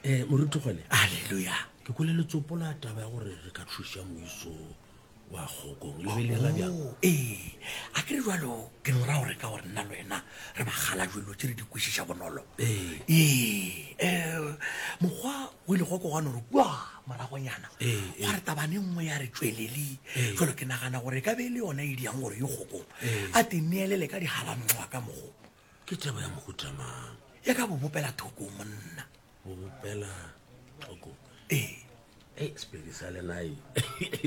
ee eh, moruti gone aleluya ke kole letsopo la taba ya gore re ka thuša moiso wa kgokong lebelera bjang oh, ee a ke re jalo ke no ra gore ka gore nna le wena re bagala jelo tse re di kwešiša bonolo ee um eh, mokgwa o ile go kogano re kua moragonyana gwa re tabane nngwe ya re tswelele jalo ke nagana gore e ka be e le yona e di yang gore yo kgokong a te neelele ka digalanngwa ka mogo ke taba ya mohuta mang ya ka bobopela thoko monna bobopela thoko ee e sepedi sa lenae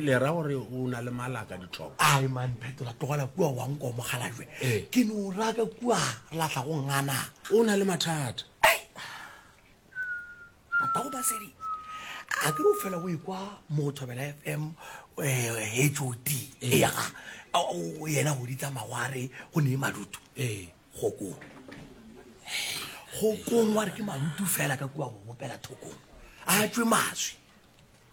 le ra gore o na le malaka ditlhoko ai man phetola tlogela kua wa nko mogalajwe ee. ke no raka kua re latlha go ngana o na le mathata Papa go basedi a ke o fela o ikwa mo thobela fm hot eh, ya o yena go ditsa magware go ne madutu eh. go kong go kong wa re ke madutu fela ka kua go bopela thokong a tswe maswi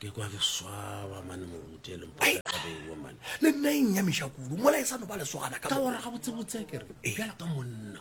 ke kwa ke swaba mane moruti e lengpaabewa mane le nna e nnyamiša kudu mola e sa no ba lesogana ka gore ga botsebotsea kere jala ka monna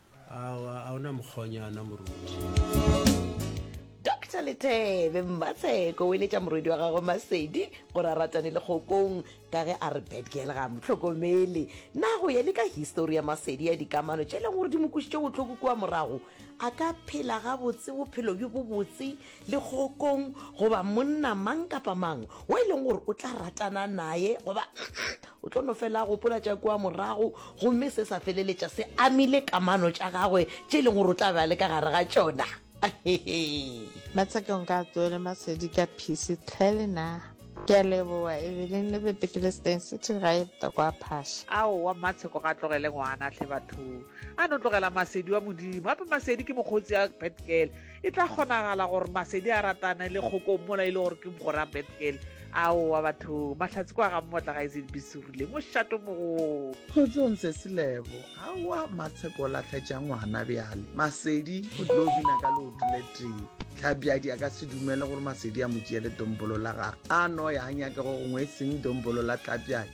awa a ona mokgonyana moruti dr letebe mmatsheko o eletša morwedi wa gagwe masedi gore a ratane le kgokong ka ge a re bedgirl ga mo tlhokomele na go ye le ka histori ya masedi ya dikamano tše e leng gore di mo kwisitše botlhoko kua morago a ka phela gabotse bophelo bjo bo botse le kgokong goba monna mang kapa mang o e leng gore o tla ratana naye goba O tlo no fela a gopola tša kua morago, gomme se sa feleletša se amile kamano tša gagwe tše e leng gore o tla be a le ka gare ga tšona. Matsakong ka tsoele masedi ka phisi tlhe le na. Ke a leboa Evelyn le Betekelesteng City ga e botokwa a phaša. Aowa mmatsheko ga a tlogele ngwana hle bathong a no tlogela masedi wa modimo gape masedi ke mokgotsi a betgirl E tla kgonagala gore Masedi a ratane le kgokong mola e le gore ke mogora Betgel. Aowa bathong, Mahlatse kwa ga mmotla ga e se dibisurile, mošato mogolo. Kgotsong Sesilebo, aowa Matsheko o lahletša ngwana bjale. Masedi o tlo bina ka leoto le tee. Tlhabjadi a ka se dumele gore Masedi a mo tšeele dombolo la gagwe. A no ya a nyake go gongwe e seng dombolo la Tlabjadi.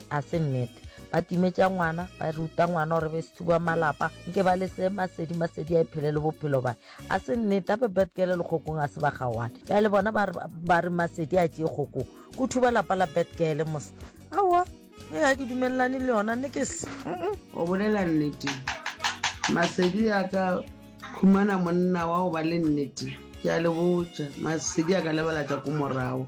A se nnete? Ba timetša ngwana, ba ruta ngwana gore be sethuba malapa, nke ba le se masedi masedi a ephele le bophelo bae. A se nnete? Gape Betgele le kgokong a se ba kgaoane. Bjale bona ba re, ba re masedi a tšee kgokong. Go thuba lapa la Betgele mos. Aowa, ge ga ke dumelelane le yona, nne ke se. Go bolela nnete, masedi a ka khumana monna wa go ba le nnete. Ke a le botša, masedi a ka lebala tša ko morago.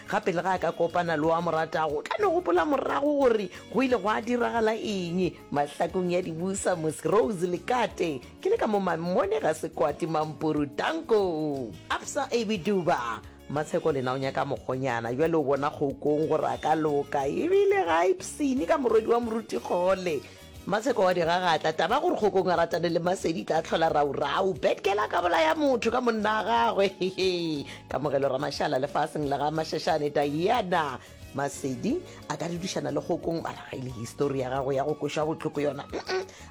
Gape lega a ka kopana le o a mo ratago, o tla no gopola morago gore go ile gwa diragala eng. Mahlakong ya dibusa, Mosi, Rose le Kate, ke le ka mo Mammone, Gasekwati, Mampuru, Tanko, Absa, Abby, Duba, Matsheko lena o nyaka mokgonyana bjale o bona Kgokong gore a ka loka ebile ga a ipshine ka morwedi wa Moruti Kgole. Maseko wa di gagatla. Taba gore kgokong a ratane le Masedi e tla tlhola raurau. Bad girl a ka bolaya motho ka monna a gagwe. Kamogelo Ramashala lefaseng la ga Mashashane Diana. Masedi a ka dudišana le kgokong mara ga e le histori ya gago ya go koša botlhoko yona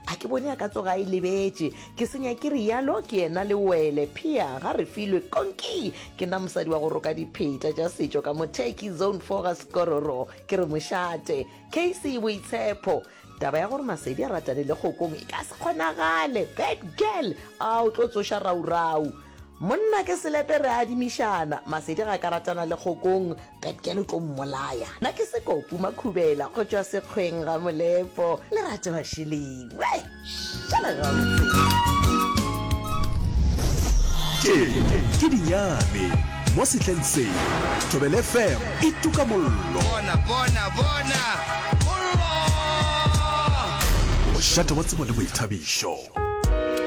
a ke bone a ka tsoga e lebetše ke senya ke rialo ke yena le wele phia ga re filwe konki ke nna mosadi wa go roka dipheta tša setšo ka motheki zone four ga sekororo ke re mošate Casey Boitshepo, Taba ya gore Masedi a ratane le Kgokong e ka se kgonagale. Bad girl, a o tlo tsoša raurau. Monna ke selepe re adimišana. Masedi ga ka ratana le Kgokong, bad girl o tlo mmolaya. Na ke Sekopu Makhubela go tšwa Sekgweng Ramolepo, Lerato Mashiling. tše ke dinyane mo sehleng se thobele fm e tuka mollo bona bona bona mollo mošate wa tsebo le boithabišo